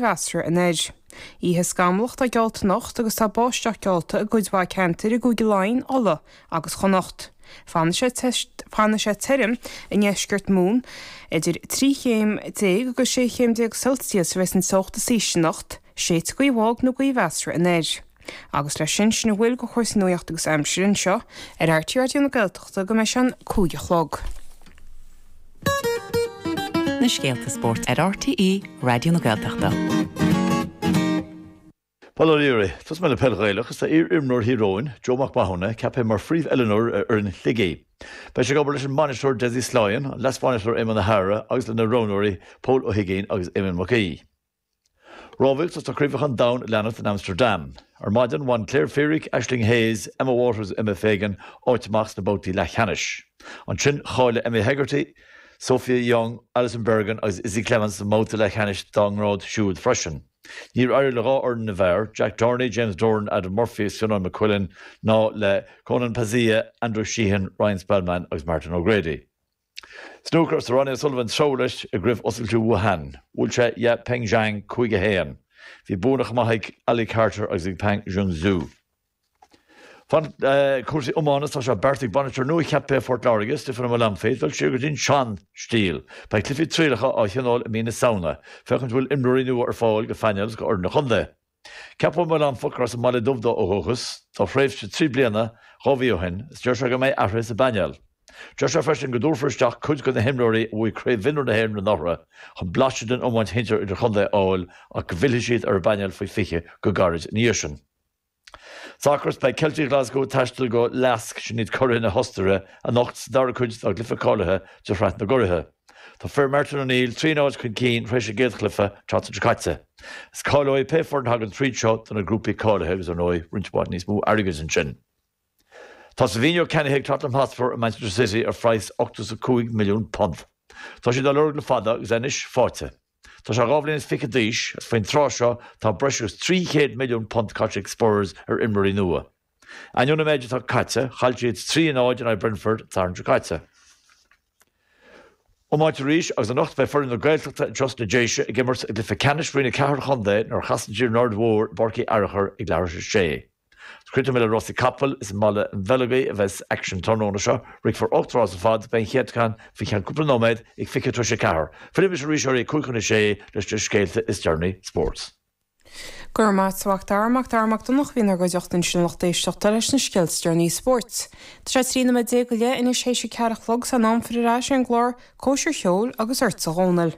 mheasartha anoir. Oíche scamallach atá geallta anocht agus tá báisteach geallta i gcuid mhaith ceantair i gCúige Laighean, Uladh agus Chonnacht. Fanfaidh sé tirim i ndeisceart Mumhan, idir 13 chéim agus 16 chéim Celsius a bheas an teocht is ísle anocht. Séidfidh gaoth bhog nó gaoth mheasartha anoir. agus leis sin, sin a bhfuil go chúrsaí nuaíocht agus aimsir anseo ar RTÉ Raidió na Gaeltachta go mbeidh sé an cúig a chlog. Na scéalta spóirt ar RTÉ Raidió na Gaeltachta. Bail ó Dhia oraibh, tosóidh mé le peil Ghaelach is tá iar-imreoir Thír Eoghain, Joe Mac Mathúna, ceaptha mar phríomhoiliúnóir ar fhoireann Shligigh. Beidh sé ag obair leis an mbainisteoir Dessie Sloyan, an leasbhainisteoir Éamonn O'Hara agus lena roghnóirí Pól Ó hUiginn agus Éamonn Mac Aoidh. Rámhaíocht is tá chraobhacha an domhain ag leanacht in Amsterdam. Ar maidin bhain Claire Feerick, Aisling Hayes, Emma Waters is Emma Fagan áit amach sna babhtaí leathcheannais. Ansin cháiligh Emily Hegarty, Sophia Young, Alison Bergin agus Izzy Clements don mbabhta leathcheannais dá ngrád siúd freisin. Níor éirigh le dhá fhoireann na bhfear, Jack Dorney, James Doran, Adam Murphy is Fionnán McQuillan, ná le Konan Pazzaia, Andrew Sheehan, Ryan Spelman agus Martin O'Grady. Snúcar is tá Ronnie O'Sullivan ag treabhadh leis i gCraobh Oscailte Wuhan. Bhuail sé Yao Pengcheng, 5 1. Bhí buanna chomh maith ag Ali Carter agus ag Pang Junxu. Fan cúrsaí iomána tá sé beartaithe ag bainisteoir nua cheaptha Phort Láirge, Stiofán Ó Maolanfaidh, dul siar go dtí an sean stíl. Beidh cluichí trialacha á thionól i mí na Samhna, féachaint an bhfuil imreoirí nua ar fáil go phainéal agus go fhoireann an chontae. Ceapadh an Maolanfach, arb as an mBaile Dubh dó ó dhúchas, do thréimhse trí bliana, dhá mhí ó shin, is deir sé go mbeidh athruithe sa bpainéal. Deir sé freisin go dtabharfar isteach cuid de na himreoirí a bhuaigh Craobh Mhionúir na hÉireann anuraidh chun blaiseadh den iomáint shinsir idir-chontae a fháil ach go bhfillfidh siad ar an bpainéal faoi 20 go gairid ina dhiaidh sin. Sacar is beidh Ceiltigh Ghlaschú ag taisteal go LASK, sin iad curaithe na hOstaire, anocht sa dara cuid dá gcluiche cáilithe de shraith na gcuraithe. Tá fir Martin O'Neill trí náid chun cinn tar éis a gcéad chluiche an tseachtain seo caite. Is cáileoidh pé foireann a thagann tríd seo do na grúpaí cáilithe agus, ar ndóigh, roinnt mhaith níos mó airgid ansin. Tá Savinho ceannaithe ag Tottenham Hotspur ó Manchester City ar phraghas £85,000,000. Tá siad á lorg le fada agus é anois fáighte. Tá sé dhá bhliain is fiche d'aois agus faoin tráth seo tá breis agus £300,000,000 caite ag Spurs ar imreoirí nua. Ainneoin an méid atá caite, chaill siad trí náid in aghaidh Brentford an Satharn seo caite. Iomáint arís agus anocht beidh foireann na Gaeltachta i dTrust na Déise ag imirt i gcluiche ceannais Roinn 4 Chontae nuair a chasann siad ar an Aird Mhór i bPáirc Uí Fhearchair ag leathuair tar éis a sé. Críochnóidh mé le rásaí capall, is i mBaile an Bheileogaigh a bheas aicsean an tráthnóna seo, rithfear ocht rás ar fad, beidh an chéad cheann faoi cheann cúpla nóiméad ag fiche tar éis a ceathair. Fillfidh mise arís oraibh ag cúig chun a sé leis na scéalta is deireanaí spóirt. Go raibh maith agat a Mhac Dara, Mac Dara Mac Donncha a bhí inár gcuideachta ansin a lucht éisteachta leis na scéalta is deireanaí spóirt. Tá sé trí nóiméad déag go leith anois théis a ceathair a chlog, tá sé in am filleadh ar ais ar an gclár, Cóisir Cheoil agus ortsa a Dhomhnaill.